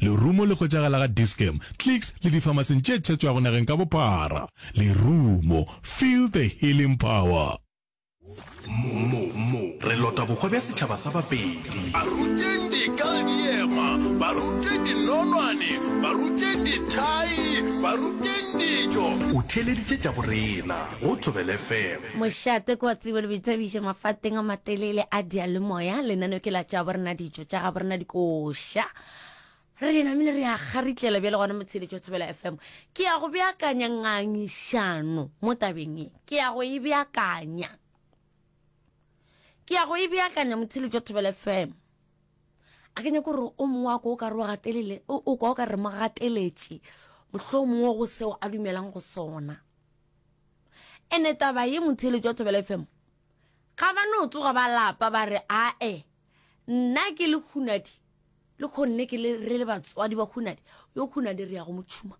Lerumo le hwetšagala ga Dis-Chem, Clicks le difamaseng tše tšhetšwago nageng ka bophara. Lerumo, feel the healing power. Mo, mo, mo re lota bohwa bja setšhaba sa Bapedi. Ba ruteng dikaldiema, ba rute dinonwane, ba ruteng dithai, ba ruteng dijo. O theeleditše tša go rena go Thobela FM. Mošate kwa tsebo le boithabišo mafateng a matelele a diyalemoya. Lenaneo ke la Tšabo Rena Dijo. tša gabo rena dikoša re di namile re ya garitlela bjale gona motsheletšo thobela fm ke ya go beakanya ngangišano mo tabeng e ke ya go e beakanya ke ya go e beakanya motsheletšo thobela fm a ke nyako gore o mongwe wa ko o ka re o gatelele o kwa o ka re mo gateletše mohlho mongwe go seo a dumelang go sona ene taba ye motsheletšo thobela fm ga ba no tsoga ba lapa ba re ae nna ke le hunadi le khonne ke le re le batswadi ba hunadi yo hunadi re ya go motšhuma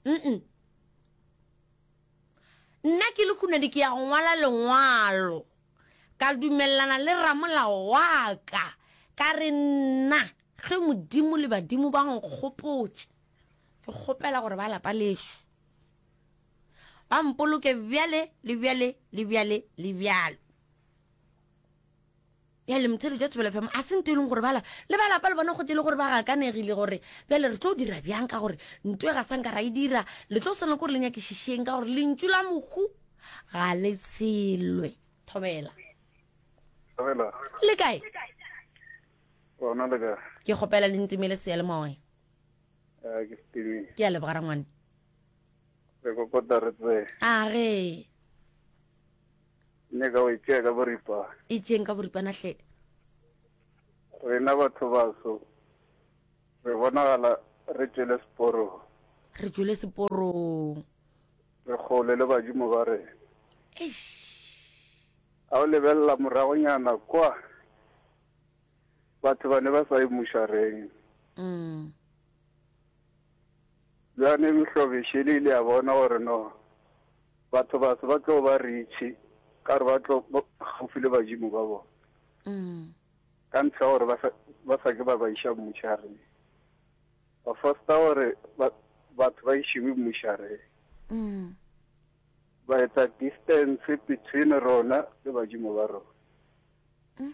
mm nna ke le hunadi ke ya go ngwala lengwalo ka dumelelana le ramolao wa ka ka re nna ge modimo le badimo ba nkgopotše ke kgopela gore ba lapa lešo ba mpoloke bjale le bjale le bjale le bjalo bjale motsedi jwa thobelo fm a se nto e leng gore bala le ba lapa le bona go tele gore ba gakanegile gore bjale re tlo dira bjang ka gore nto e ga sanka ra e dira le tlo swana kore le nyakešišeng ka gore lentšu la mohu ga le tshelwe thobela le kae ke kgopela le ntimele seya le moya eh, ke a lebogara ngwane a ge Nne ka o e tšea ka boripana. E tšeeng ka boripana hle. Rena batho baso re bonagala re tšwele seporong. Re tšwele seporong. Re kgole le badimo ba rena. Eish. A o lebelela moragonyana kwa batho ba ne ba sa e mushareng. Mm. Bjale Mehlobeše le ile a bona gore no batho ba se ba tlo ba ritšhi ka gore ba tlo gaufi le badimo ba bona mm. ka ntlha gore ba sa ke ba ba iša mmušareng ba fosta gore batho ba išiwe mmušareng mm. ba etsa distance between rona le badimo ba rona mm.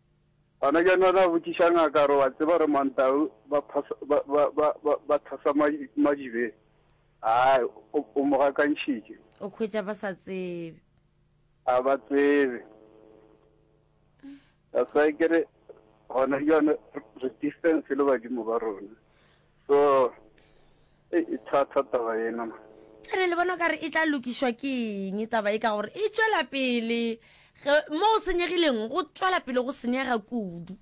Gona bjana o tla botšiša ngaka gore wa tseba gore Mantau ba phasa, ba, ba, ba, ba, ba thasa madi, madibe. Ai, o, o mo gakantšhitše. O khwetša ba sa tsebe. A ba tsebe. That's why ke re gona bjana re distance le badimo ba rona. So, e, e thata taba yena ma. Bjale le bona o ka re e tla lokišwa ke eng taba e ka gore e tšwela pele ge mo go senyegileng go tšwela pele go senyega kudu.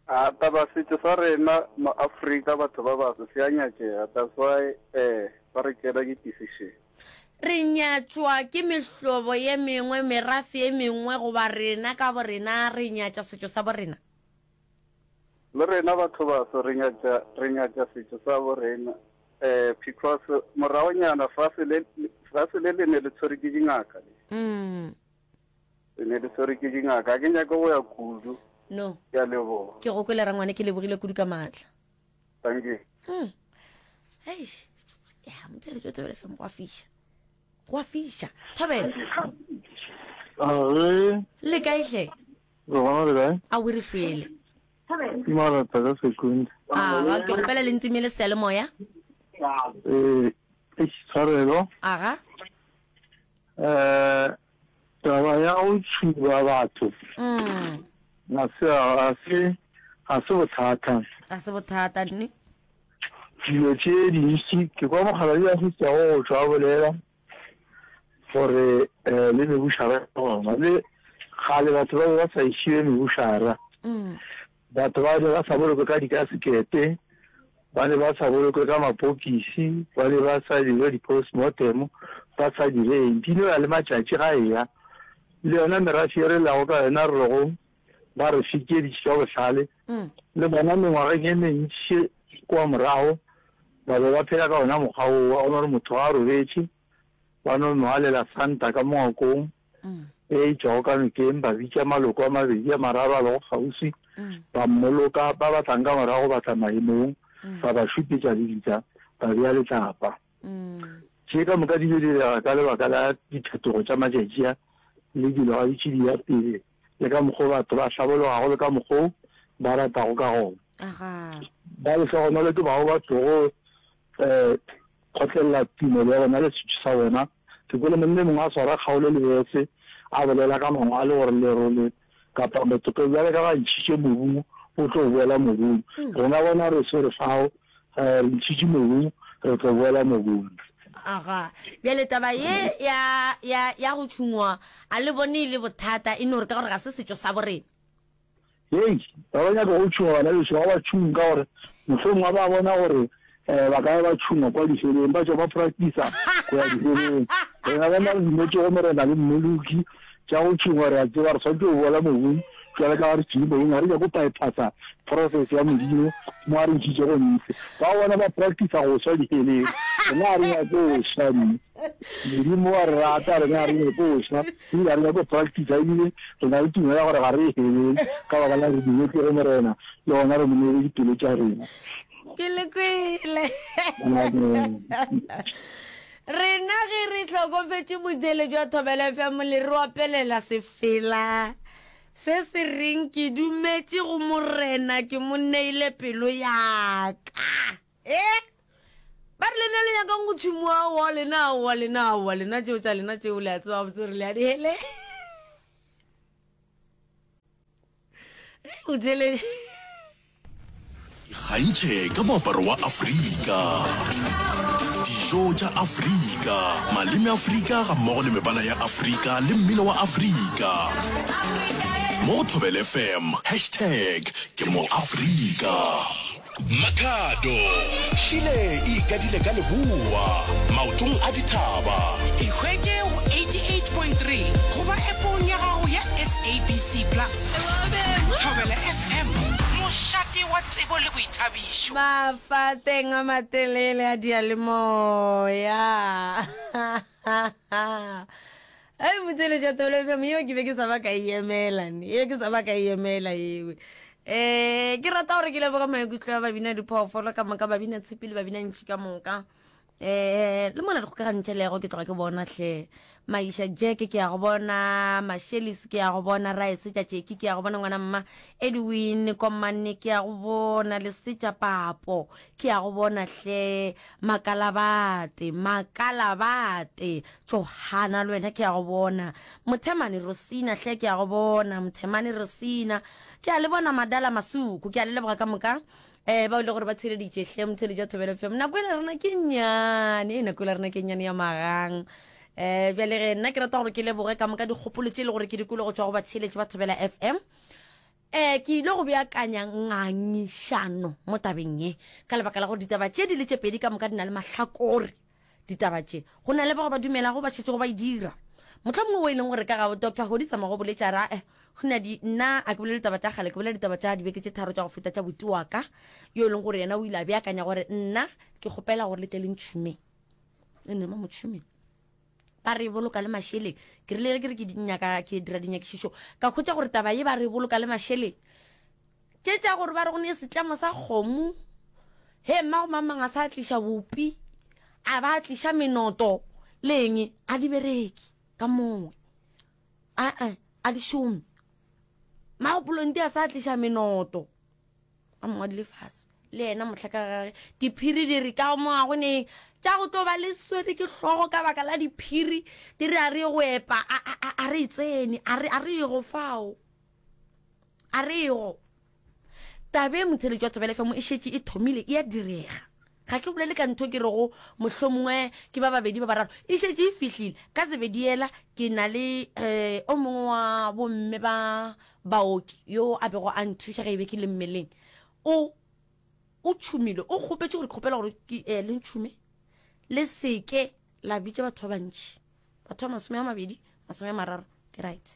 A taba setšo sa rena mo Afrika batho ba baso se a nyatšega that's why eh ba re tšela ke decision. Re nyatšwa ke mehlobo ye mengwe, merafe ye mengwe goba rena ka borena re nyatša setšo sa borena? Le rena batho baso re nyatša re nyatša setšo sa bo rena eh because moragonyana fase le fase le le ne le tshwere ke dingaka le mm. le ne le tshwere ke dingaka ga ke nyake go ya kudu no ke a leboga ke go kwele rangwane ke lebogile kudu ka maatla thank you mm. hey ya motsere tswe tswe fm go fiša go fiša thobela a re le kae hle Re gona le kae? A we re hlwele. Ke marata ka sekundi. Aga, ke gopela le ntime le sele moya. Eh, eish, tshwarelo. Aga. Eh, taba ya go tšhuba batho. Mm. Na se a se a se bothata. A se bothata ne. Dilo tše dintši ke kwa mokgaladi a se tsa go tšwa bolela. gore eh, le mebušara gona le kgale batho ba be ba sa išie mebušara mm. batho ba ne ba sa bolokwe ka dikasekete ba ne ba sa bolokwe ka mapokisi ba ne ba sa dire di-postmortem ba sa direng di ne ba le matšatši ga eya le yona merafi e re lago ka yona re lego ba re fitšeditše ka bohlale le bona mengwageng e mentši kua morago ba be ba phela ka ona mokgwa wo wa gore motho ga a robetše ba no nwalela santa ka mongwakong e itšwago ka nokeng ba bitša maloko a mabedi a mararo a lego kgauswi ba mmoloka ba batlang ka morago ba tla maemong ba ba šupetša lebitla ba bea letlapa Tše ka moka di ile direga ka lebaka la diphetogo tša matšatši a le dilo ga di tšidi ya pele le ka mokgwa batho ba hlabologago le ka mokgwa ba ratago ka gona. Ba lehlogonolo ke bao ba tlogo um kgotlelela tumelo ya bona le setšo sa bona. Ke kwele monna e mongwe a swara kgaolo le bese a bolela ka mangwalo gore lerole kapa mothope bjale ka ba ntšhitše mobung o tlo boela mobung rena bona re swere fao um re ntšhitše mobung re tlo boela mobung aga bjale taba ye ya ya ya go tšhungwa a le bone e le bothata e no re ka gore ga se setšo sa borena hei ba ba nyaka go tšhunga bana beso ba ba tšhung ka gore mohlong wa ba bona gore Ee, ba ka ya ba tšhuma kwa difeleng, ba tšwa ba practicer go ya difeleng. Rena ba na le dimotse gomme re na le mmeluki tša go tšhuma, re a tseba re swanetše go boela mobung bjale ka ga re tšhile mobung, ga re nyake go bypassa process ya Modimo mo a re ntšhitše gonte. Ba bona ba practicer go swa difeleng, rena ga re nyake go swa nne. Modimo wa re rata, rena ga re nyake go swa ebile ga re nyake go practicer ebile re na le tumelo ya gore ga re ye heleng ka baka la gore re dimotse go Morena le gona re mo neele dipelo tša rena. ke le kwele rena ge re tlhokofetše botsele jwa thobela fya mole re opelela sefela se se reng ke dumetše go morena ke mo neile pelo yaka e ba re lena le nyakang go tshimoa wa lena wa lena wa lena tšeo tša lena tšeo le a tseba botse gore le a dihele o tsele ikgantšhe ka moaparo wa afrika dijo tša afrika maleme afrika ga mmogo le mebala ya afrika le mmino wa afrika mo go thobele fm hashtag ke mo afrika Makhado. Šile e ikadile ka leboa, maotong a dithaba. E hwetše go 88.3 goba App-ong ya gago ya SABC Plus. Thobela FM, mošate wa tsebo le boithabišo. Mafateng a matelele a diyalemoya. A e botseletša tolo FM yeo ke be ke sa ba ka e emela ne yeo ke sa ba ka e emela ewe um ke rata gore ke leboga maikutlo ya babina diphoofolo ka moka babina tshipi le babina ntši ka moka eh le mona dikgokagantšha le yago ke tloga ke bona hle maisha jeke ke ya go bona mashelis ke ya go bona raesetša tšeki ke ya go bona ngwana mma edwin komane ke ya go bona lesetša papo Ke a go bona hle, Makalabate, Makalabate. Johana, le wena ke a go bona. Mothemane Rosina hle, ke a go bona. Mothemane Rosina. Ke a le bona Madala Masuku, ke a le leboga ka moka. Eh, ba ile gore ba theleditše hle, mothele jwa thobelo fm. Nako e le rena ke nyane, e nako e le rena ke nyane ya magang. Eh, bjale ge nna ke rata gore ke leboge ka moka dikgopolo tše e le gore ke dikologo tšwa go batheeletši ba thobela fm. Ee, ke ile go beakanya ngangišano mo tabeng ye, ka lebaka la gore ditaba tše di le tše pedi ka moka di na le mahlakore. Ditaba tše, go na le bao ba dumelago ba šetšego ba e dira. Mohla mongwe wo e leng gore ka ga Doctor Holly tsamago boletša ra, eh, Hunadi, nna a ke bolele taba tša kgale, ke bolela ditaba tša dibeke tše tharo tša go feta tša boti wa ka, yo e leng gore yena o ile a beakanya gore nna ke kgopela gore le tle le ntšhume. Enema motšhume. ba re boloka le mašeleng ke rile ke re ke nyaka ke dira dinyakišišo ka khwetša gore taba ye ba re boloka le mašeleng tše tša gore ba re go ne setlamo sa kgomo he mma go mamang a sa tliša bopi a ba tliša menoto leng a di bereki ka mongwe a a di šome magopolong di a sa tliša menoto a mongwe dile fase le yena motlha ka gage diphiri di re ka mo ga go ne tša go tlo ba le swere ke hlogo ka baka la diphiri di re a re go epa a re e tsene a re ego fao a re ego tabe motheletši wa thobelefemo e šetše e thomile e ya direga Ga ke bolele ka ntho ke rego mohlomongwe ke ba babedi ba bararo e šetše e fihlile ka zebedi yela. Ke na le um o mongwe wa bomme ba baoki yo a bego a nthuša ge e be ke le mmeleng. O o tšhumile, o kgopetše gore ke kgopela gore ke um le ntšhume le se ke la bitša batho ba bantši. batho ba masome a mabedi masome a mararo ke right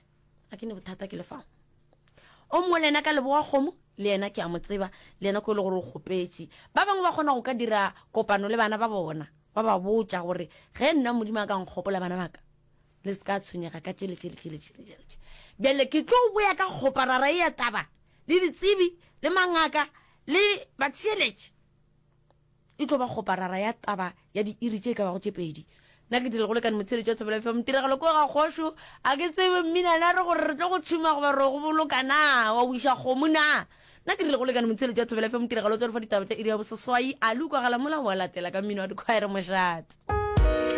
a ke ne bothata ke lefago o mongwe le ena ka leboga kgomo le yena ke a mo tseba le yena ko e le gore o kgopetše ba bangwe ba kgona go ka dira kopano le bana ba bona ba ba botša gore ge nna modimo a ka nkgopola bana baka le se ka tshwenyega ka tšele tšele tšele tšele tšele tšele bjale ke tlo boya ka kgoparara e ya taba le ditsebi le mangaka le batheeletše E tlo ba kgoparara ya taba ya diiri tše e ka bago tše pedi. Nna ke tlile go lekane motsheletši wa Thobela FM, Tiragalo ke wa ga Kgošu. A ke tsebe mmina na re gore re tlo go tšhuma goba re go boloka na? Wa wiša kgomo na? Nna ke tlile go lekane motsheletši wa Thobela FM, Tiragalo tswa re fa ditaba tša iri ya boseswai. Ali o kwagala mola o a latela ka mmino wa dikhwaere mošate.